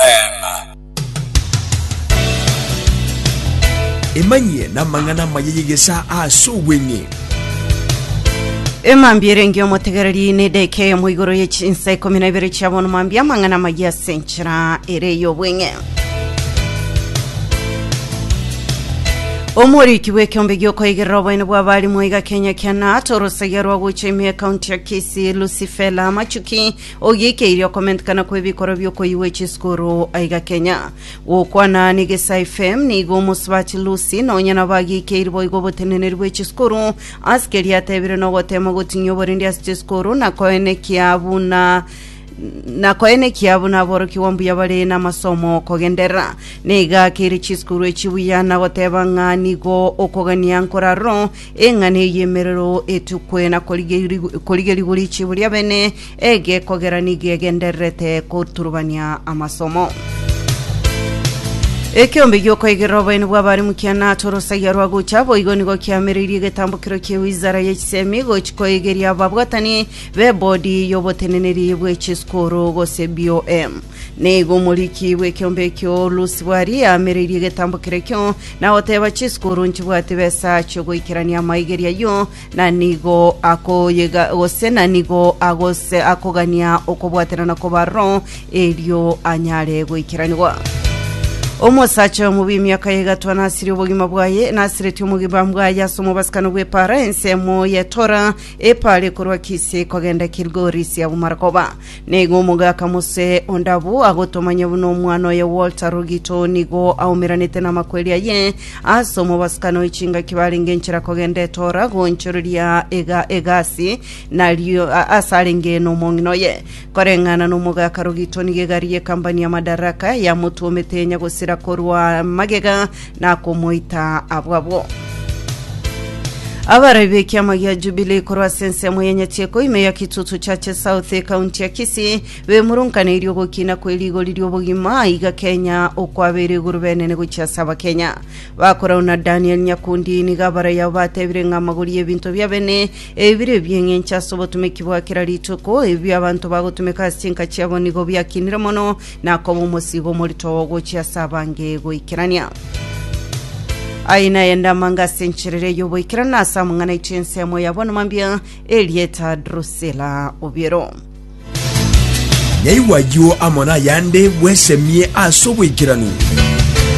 Amen. Emanyie namang'ana amaya y'egesaa ase obweng'e. Emambia erenge omotegereri na edeka eyemo igoro ye chinsa ikomi na ibere chia bono mambia amang'ana amaya ase enchera ere y'obweng'e omoriki bw'ekeombe giokoigerera oboene bwa barimwa iga kenya kiana torosagia rwa gocha ime ekaunti ya kisi lucifela machuki Ogiikeire okomentekana kw'ebikorwa bi'okoyigwa echisukuru aiga Kenya. Gokwana n'Egesaai FM, nigo omosubati Lucy nonya nabo agiikeiri boigo oboteneneri bw'echisukuru ase keria atebire nogoteema gotinyia oborindi ase chisukuru na koenekia buna na koenekia buna aborokigwa mbuya bare namasomo kogenderera neiga akeire chisukuru echi buya na goteba ng'a nigo okogania nkoraroro Eng'ana eye emerero etukwe na korigeri- korigerigwa richibu ri'abene egekogera nigo egendererete koturubania amasomo. Ekeombe giokoigerera oboyeni bw'abare mukiana ase orosaiya rwa gocha boigo nigo kiamereirie egetambokero kie wizara ye chisemi gochi koigeria ababwatani b'ebodi y'oboteneneri bwe chiskuru gose BOM. Nigo omoriki bw'ekeombe ekio Lusibari amereirie egetambo kerekio, na goteba chisuku oronchibwati besa chi'ogoikerania amaigeri ayio, na nigo akoyega gose na nigo agose akogania okobwaterana kw'abaroro, erio anyare goikeranigwa. Omosacha oyomo bw'emiaka ya egatwa nasirie obogima bwaye, nasiretie omogima bwaye ase omobasikano bw'epaara ensemo y'etora, epaara ekorwa Kisi kogenda Kilgori sia Bumarakoba. Nigo omogaka Mose ondabu agotomanya buna omwana oye Walter Rugito nigo aumeranete namakweri aye ase omobasikano oe chingaki barenge enchera kogenda etora goonchoreria ega egasi nario a- ase arenge nomong'ina oye koreng'ana nomogaka Rugito nigo egari ye kambani ya Madaraka yamotuomete yenya gosira korwa magega nakomoita abwo abwo. Abarai b'ekiama gia Jubilee korwa ase ensemo ya Nyachieko ime ya Kitutu Chache South ekaunti ya Kisii bemurunkaneirie ogokina kwe rigori ri'obogima iga Kenya okwabeire iguru benene gochia ase Abakenya. Bakorau na Daniel Nyakundi nigo abarai abo batebire ng'a amagori y'ebinto bia bene ebire ebi'eng'encho ase obotumeki bwa kera rituko ebio abanto bagotumeka ase chinka chiabo nigo biakinire mono nakoba omosigo omorito ogochia ase abange goikerania aye naye ndamanga ase encherere y'oboikerana ase amang'ana aito ensemo ya bono mambia erieta drusila obiero Nyaigwa ayio amo nayande bwesemie ase oboikeranu.